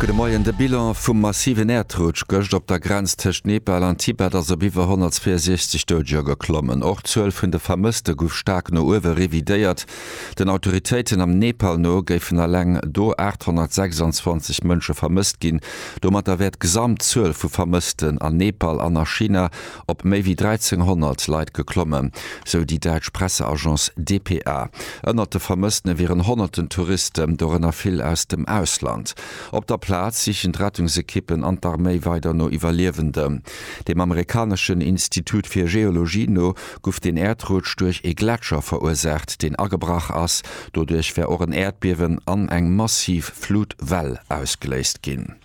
Gudde Moien, De Bilan vum massiven Äerdrutsch gëscht op der Grenz tëscht Nepal an Tibet ass op iwwer 162 Doudeger geklommen. Och d'Zuel vun de Vermësste gouf staark no uewe revidéiert. Den Autoritéiten am Nepal no géifen eleng do 826 Mënsche vermësst ginn. Domatter wär d'Gesamtzuel vu Vermëssten an Nepal an a China op méi wéi 1.300 Leit geklommen, sou déi däitsch Presseagence dpa. Ënnert de Vermëssene wieren honnerten Touristen, dorënner vill aus dem Ausland. Op der Plaz sichen d'Rettungsekippen an d'Arméi weider no Iwwerliewenden. Dem amerikaneschen Institut fir Geologie no guff den Äerdrutsch duerch ee Gletscher verursaacht, deen agebrach ass. Doduerch wär och en Äerdbiewen an eng massiv Flutwell ausgeléist ginn.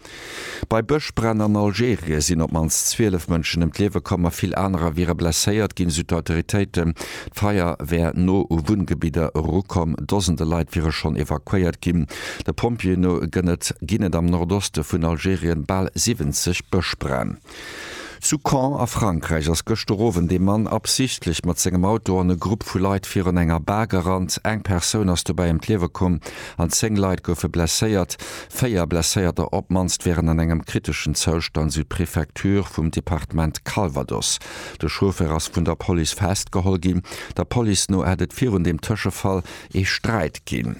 Bei Bëschbränn an Algerien sinn op d'mannst 12 Mënschen ëm d'Liewe komm a vill anerer wiere blesséiert ginn, esou d'Autoritéiten. D'Feier wär no u Wunngebidder erukomm. Dosende Leit wiere schonn evakuéiert ginn. De Pompjeeë no gënn et am Nordoste vun Algerien bal 70 Bëschbränn. Zu Caen a Frankräich ass gëschter Owend ee Mann absichtlech mat sengem Auto an e Grupp vu Leit virun enger Bar gerannt. Eng Persoun ass dobäi ëm d'Liewe komm an 10 Leit goufe blesséiert. Véier Blesséierter op d'mannst wieren an engem kriteschen Zoustand, sou d'Prefecture vum Departement Calvados. De Chauffer ass vun der Police festgeholl ginn. Der Police no hätt et virun deem Tëschefall ee Sträit ginn.